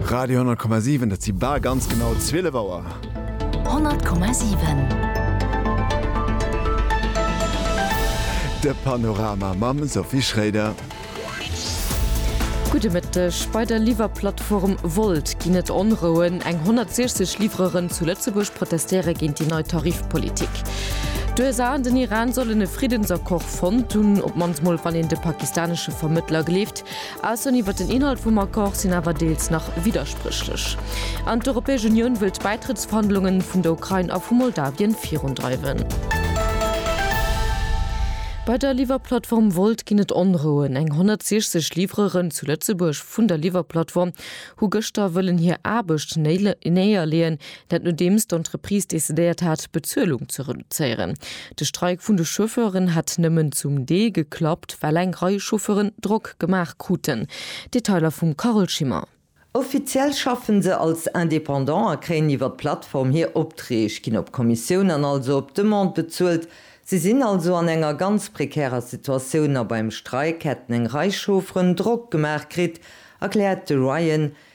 Radio 10,7 et si bal ganz genau 12 Auer. 10,7. De Panorama mam Sophie Schréider. Gudde Mëtteg. Bei der Liwwerplattform Wolt ginn et Onrouen. Eng 160 Liwwereren zu Lëtzebuerg protestéiere géint déi nei Tarifpolitik. D'USA an den Iran sollen e Friddensaccord fonnt hunn, op d'mannst mol wann een de pakistanesche Vermëttler gleeft. Aussoen iwwer den Inhalt vum Accord sinn awer deels nach widderspréchlech. An d'Europäesch Unioun wëll d'Bäitrëttsverhandlunge vun der Ukrain a vu Moldawien virundreiwen. Bei der Liwwerplattform Wolt ginn et Onrouen. Eng 160 Livreuren zu Lëtzebuerg vun der Liwwerplattform hu gëschter wëllen hir Aarbecht néierleeën, Dat nodeems d'Entreprise decidéiert hat, d'Bezuelung ze reduzéieren. De Streik vun de Chauffeuren hätt nëmmen zum Deel geklappt, well eng Rei Chauffeuren Drock gemaach kruten. Detailer vum Carole Schimmer. Offiziell schaffen se als Indépendant a kréien iwwer d'Plattform hir Optreeg, ginn op Kommissioun an also op Demande bezuelt. Si sinn also an enger ganz prekärer Situatioun a beim Streik hätten eng Rei Chaufferen Drock gemaach kritt, erkläert de Ryan,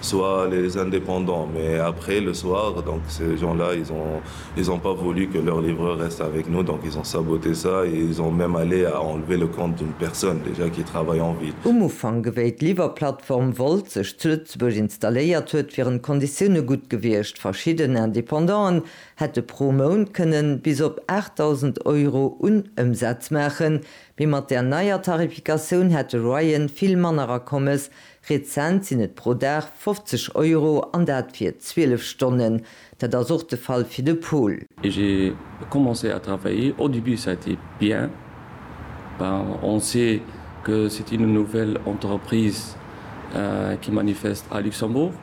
Soir les indépendants mais après le soir donc ces gens là ils ont ils ont pas voulu que leur livreur reste avec nous donc ils ont saboté ça et ils ont même allé à enlever le compte d'une personne déjà qui travaille en ville. Um Ufank ewéi d'Liwwerplattform Wolt sech zu Lëtzebuerg installéiert huet wieren d'Konditioune gutt gewiescht, verschidden Independanten hätte pro Mount kënnen bis op 8.000 Euro un Ëmsaz maachen, mee mat där neier Tarifikatioun hätt de Royen vill manner Akommes Rezent sinn et pro Dag 50 Euro, an dat fir 12 Stonnen. Dat ass och de Fall fir de Paul. Et j'ai commencé à travailler, au début ça a été bien, ben on sait que c'est une nouvelle entreprise qui manifeste à Luxembourg.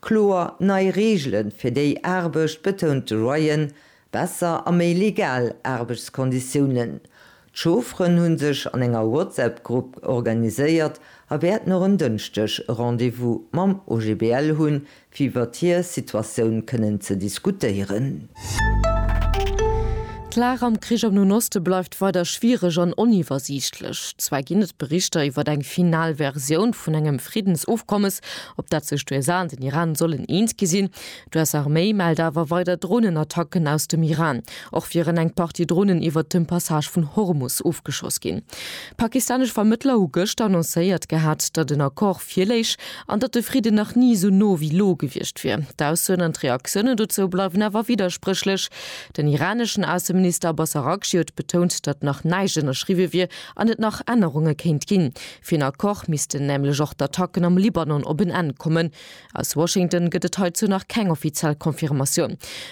Kloer nei Reegele fir déi Aarbecht, betount de Ryan, besser a méi legal Aarbechtskonditiounen. D'Chaufferen hu sech an enger WhatsApp-Grupp organiséiert a wäerten och en Dënschdeg e Rendez-vous mam OGBL hunn, fir iwwert hir Situatioun kënnen ze diskutéieren. D'Lag am Krich am Noen Oste bleift weider schwiereg an oniwwersiichtlech. Zwar ginn et Berichter iwwer eng final Versioun vun engem Friddensofkommes, op dat sech d'USA an den Iran sollen eens gi sinn. D'US-Arméi mellt awer weider Dronenattacken aus dem Iran. Och wieren eng Partie Dronen iwwert dem Passage vun Hormus ofgeschoss ginn. Pakistanesch Vermëttler hu gëschter annoncéiert gehat, datt en Accord virléich. an datt de Fridden nach ni esou no wéi lo gewiescht wier. D'Aussoen an d'Reaktiounen dozou bleiwen awer widderspréchlech. Den iraneschen Ausseminister Abbas Araghchi huet betount, datt nach näischt ënnerschriwwe wier an et nach Ännerunge kéint ginn. Fir en Accord missten nämlech och d'Attacken am Libanon op en Enn kommen. Aus Washington gëtt et heizou nach keng offiziell Confirmatioun.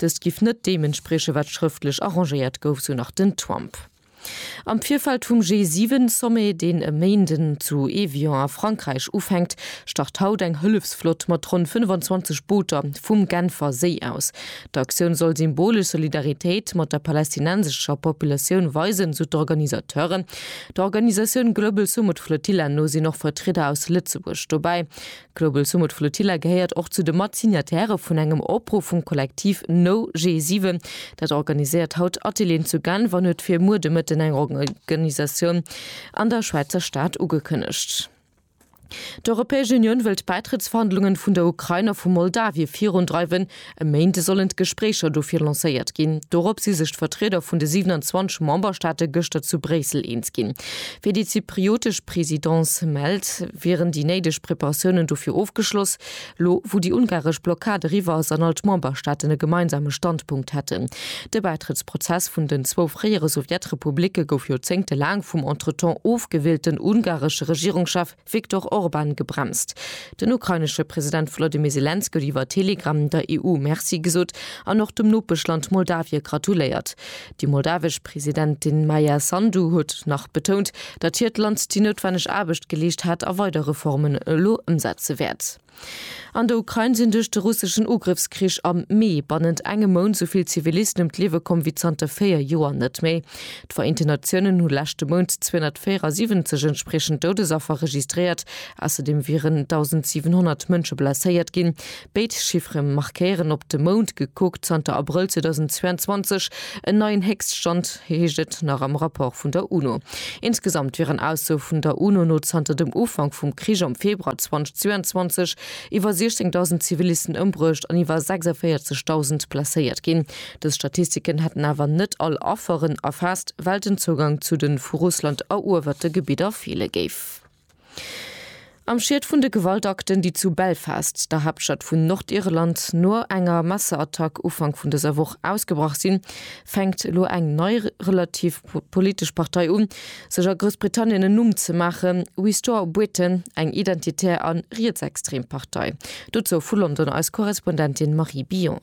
Dëst giff net deem entsprieche wat schrëftlech arrangéiert gouf, sou nach den Trump. Am Virfeld vum G7-Sommet, deen e Méinden zu Evian a Frankräich ufänkt, start haut eng Hëllefsflott mat ronn 25 Booter vum Genfer Séi aus. D'Aktioun soll symbolesch Solidaritéit mat der palästinensescher Populatioun weisen, sou d'Organisateuren. Der Organisatioun Global Sumud Flotilla no sinn och Vertrieder aus Lëtzebuerg dobäi. D'Global Sumud Flotilla gehéiert och zu de Matsignatairë vun engem Opruff vum Kollektiv No G7. Dat organiséiert haut Atelieren zu Genf an huet fir muer de Mëtten eng Organisatioun an der Schwäizer Stad ugekënnegt. D'Europäesch Unioun wëll d'Bäitrëttsverhandlungen vun der Ukrain a vu Moldawie virundreiwen. E Méint sollen d'Gespréicher dofir lancéiert ginn. Dorop si sech d'Vertrieder vun de 27 Memberstaate gëschter zu Bréissel eens ginn. Wéi déi zypriotesch Presidence mellt, wieren déi néideg Preparatiounen dofir ofgeschloss. Lo wou déi ungaresch Blockad eriwwer ass an all d'Memberstaaten e gemeinsame Standpunkt hätten. De Bäitrëttsprozess vun den zwou fréiere Sowjetrepublicke gouf joerzéngtelaang vum entretemps ofgewielten ungaresche Regierungschef, Viktor Orban gebremst. Den ukrainesche President Volodymyr Selenskyj huet iwwer Telegram der EU Merci gesot an och dem Nopeschland Moldawie gratuléiert. Déi moldawesch Presidentin Maia Sandu huet nach betount, datt hiert Land déi noutwenneg Aarbecht geleescht hat a weider Reformen elo ëmsetze wäert. An der Ukrain sinn duerch de russeschen Ugrëffskrich am Mee bannent engem Mount sou vill Zivilisten ëm d'Liewe komm wéi zanter 4 Joer net méi. D'Vereenten Natiounen hu leschte Mount 274 entspriechend Doudesaffer registréiert. Ausserdeem wieren 1.700 Mënsche blesséiert ginn. Béid Chiffere markéieren op de Mount gekuckt zanter Abrëll 2022, En neien Héchststand, heescht et nach am Rapport vun der UNO. Insgesamt wieren Aussoe vun der UNO no zanter dem Ufank vum Krich am Februar 2022 iwwer 16.000 Zivilisten ëmbruecht an iwwer 46.000 blesséiert ginn. Dës Statistiken hätten awer net all Afferen erfaasst, well den Zougang zu de vu Russland eruewerte Gebidder feele géif. Am Schiet vun de Gewaltakten, déi zu Belfast, der Haaptstad vun Nordirland, no enger Messerattack Ufank vun dëser Woch ausgebrach sinn, fänkt elo eng nei relativ politesch Partei un, sech a Groussbritannien en Numm ze maachen, Restore Britain, eng identitär a rietsextrem Partei. Dozou vu London eis Korrespondentin Marie Billon.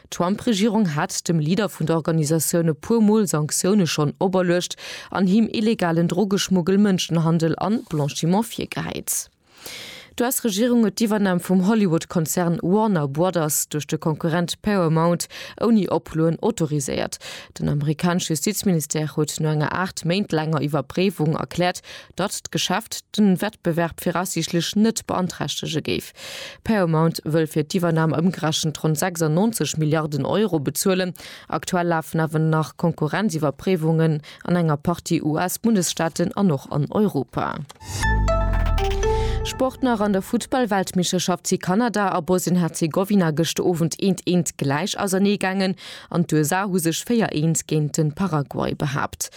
D'Trump-Regierung hat dem Leader vun der Organisatioun e puer Mol Sanktioune schonn operluecht an him illegalen Drogeschmuggel, Mënschenhandel an Blanchiment virgehäit. D'US-Regierung huet d'Iwwernam vum Hollywood-Konzern Warner Brothers duerch de Konkurrent Paramount ouni Oploen autoriséiert. Den amerikanesch Justizministère huet no enger aacht Méint laanger Iwwerpréiwung erkläert, datt d'Geschäft de Wettbewerb viraussiichtlech net beanträchtege géif. Paramount wëll fir d'Iwwernam ëmgerechent ronn 96 Milliarden Euro bezuelen. Aktuell lafen awer nach Konkurrenziwwerpréiwungen an enger Partie US-Bundesstaaten an och an Europa. Sport nach, An der Futtball-Weltmeeschterschaft si Kanada a Bosnien-Herzegowina gëscht Owend 1 1 gläich auserneegaangen an d'USA hu sech 4 1 géint de Paraguay behaapt.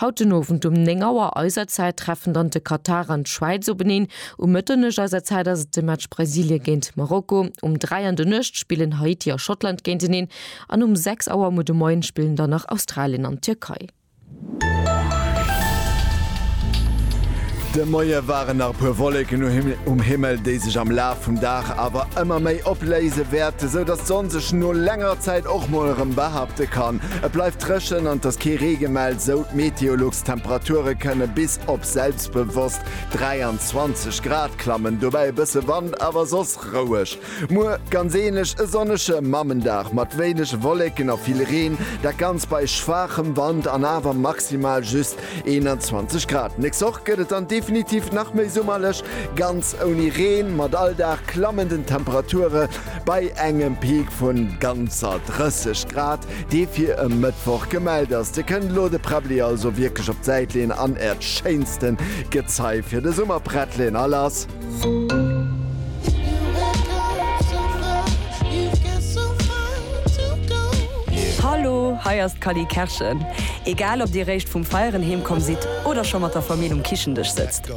Haut den Owend um 9 Auer eiser Zäit treffen dann de Katar an d'Schwäiz openeen. Um Mëtternuecht eiser Zäit ass et de Match Brasilie géint Marokko. Um 3 an der Nuecht spillen Haiti a Schottland géinteneen an um 6 Auer muer de Moien spillen dann nach Australien an d'Tierkei. De Moie waren nach e puer Wolleken um Himmel, déi sech am Laf vum Dag awer ëmmer méi opléise wäerten, sou datt d'Sonn sech no länger Zäit och mol erëm behaapte kann. Et bleift. Dréchen an et ass kee Ree gemellt, sou d'Meteolux. D'Temperature kënne bis op selbstbewosst 23 Grad klammen, dobäi e bësse Wand, awer soss roueg. Muer ganz änlech, e sonnege Mammendag mat wéineg Wolleken a vill Reen, dat Ganzt bei schwaachem Wand an awer maximal just 21 Grad. Nächst Woch gëtt et dann definitiv nach méi summerlech, ganz ouni Reen. Mat all Dag klammen den Temperature bei engem Peak vun ganzer 30 Grad dee fir e Mëttwoch gemellt ass. Dir kënnt elo de Präbbeli also wierklech op d'Säit leeën an äert schéinste Gezei fir de Summer prett leeën. All ass. Hallo, hei ass d'Cally Kerschen. Egal ob dir réischt vum Feieren heemkomm sidd oder scho mat der Famill um Kichendësch sëtzt.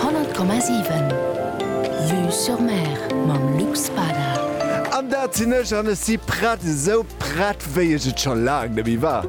100,7 Vue sur Mer mam Luc Spada. An dat sinn ech, an ech si prett, esou prett wéi ech et scho laang nemme war.